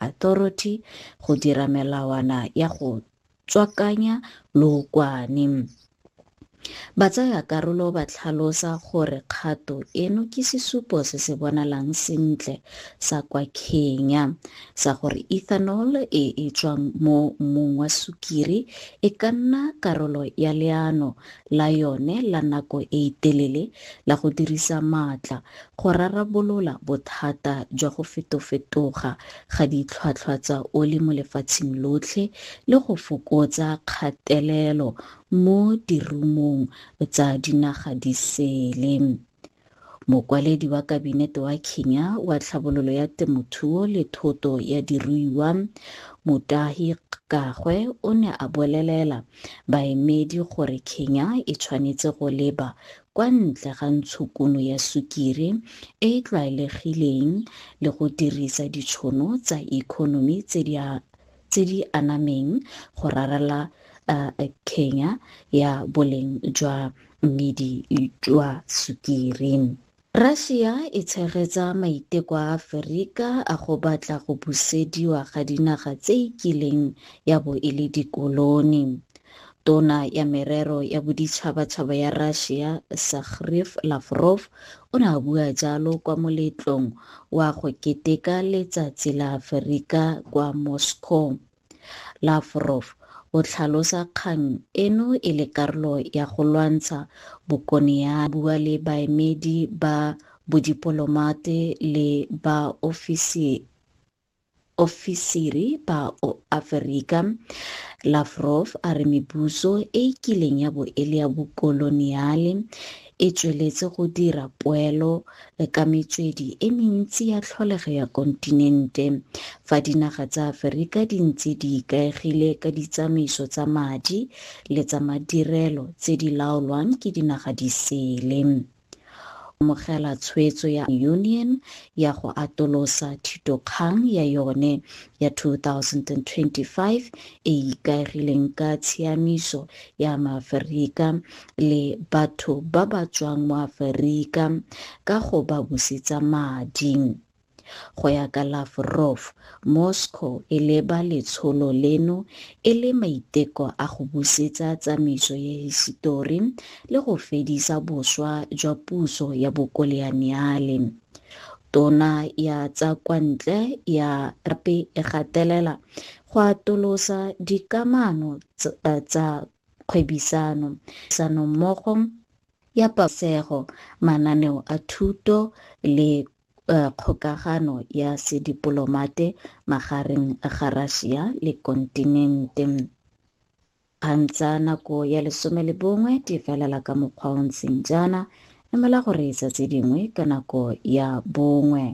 Authority go dira melawana ya go tswakanya lookwane. Batsayakarolo ba tlhalosa gore kgato eno ke sesupo se se bonalang sentle sa kwa Kenya sa gore ethanol e e tswang mo mmung wa sukiri e ka nna karolo ya leano la yone la nako e telele la go dirisa maatla go rarabolola bothata jwa go fetofetoga ga ditlhwatlhwa tsa oli mo lefatsheng lotlhe le go fokotsa kgatelelo mo dirumong tsa dinaga di sele. Mokwaledi wa Kabinete wa Kenya wa Tlhabololo ya Temothuo le Thoto ya Diruiwa, Mutahi Kgagwe o ne a bolelela baemedi gore Kenya e tshwanetse go leba kwa ntle ga ntshokuno ya sukiri e e tlwaelegileng le go dirisa ditshono tsa economy tse di tse di anameng go rarela kenya ya boleng jwa mmidi jwa sukiri. Russia e tshegetsa maiteko a Aferika a go batla go busediwa ga dinaga tse e kileng ya bo e le dikoloni. Tona ya Merero ya Boditšhabatšhaba ya Russia Sakhriv Lavrov o ne a bua jalo kwa moletlong wa go keteka Letsatsi la Aferika kwa Moscow. Lavrov o tlhalosa kgang eno e le karolo ya go lwantsha bokoniaa a bua le baemedi ba bodipolomate le ba ofisi Ofisiri ba Oaferika, Lavrov a re mebuso e e kileng ya bo e le ya bokoloniale e tsweletse go dira poelo ka metswedi e mentsi ya tlholego ya kontinente, fa dinaga tsa Aferika di ntse di ikaegile ka ditsamaiso tsa madi le tsa madirelo tse di laolwang ke dinaga di sele. amogela tshwetso ya Union ya go atolosa thitokgang ya yone ya 2025 e e ikaegileng ka tshiamiso ya Maaferika le batho ba ba tswang mo Aferika ka go ba busetsa madi. Go ya ka Lavrov, Moscow e leba letsholo leno e le maiteko a go busetsa tsamaiso ya hisitori le go fedisa boswa jwa puso ya bokoleaniale. Tona ya tsa kwa ntle ya gape e gatelela go atolosa dikamano tsa kgwebisano, tirisanommogo ya pabalesego, mananeo a thuto le kgokagano ya sedipolomate magareng ga Russia le kontinente. Kgang tsa nako ya lesome le bongwe di felela ka mokgwa o ntseng jaana, emela gore etsa tse dingwe ka nako ya bongwe.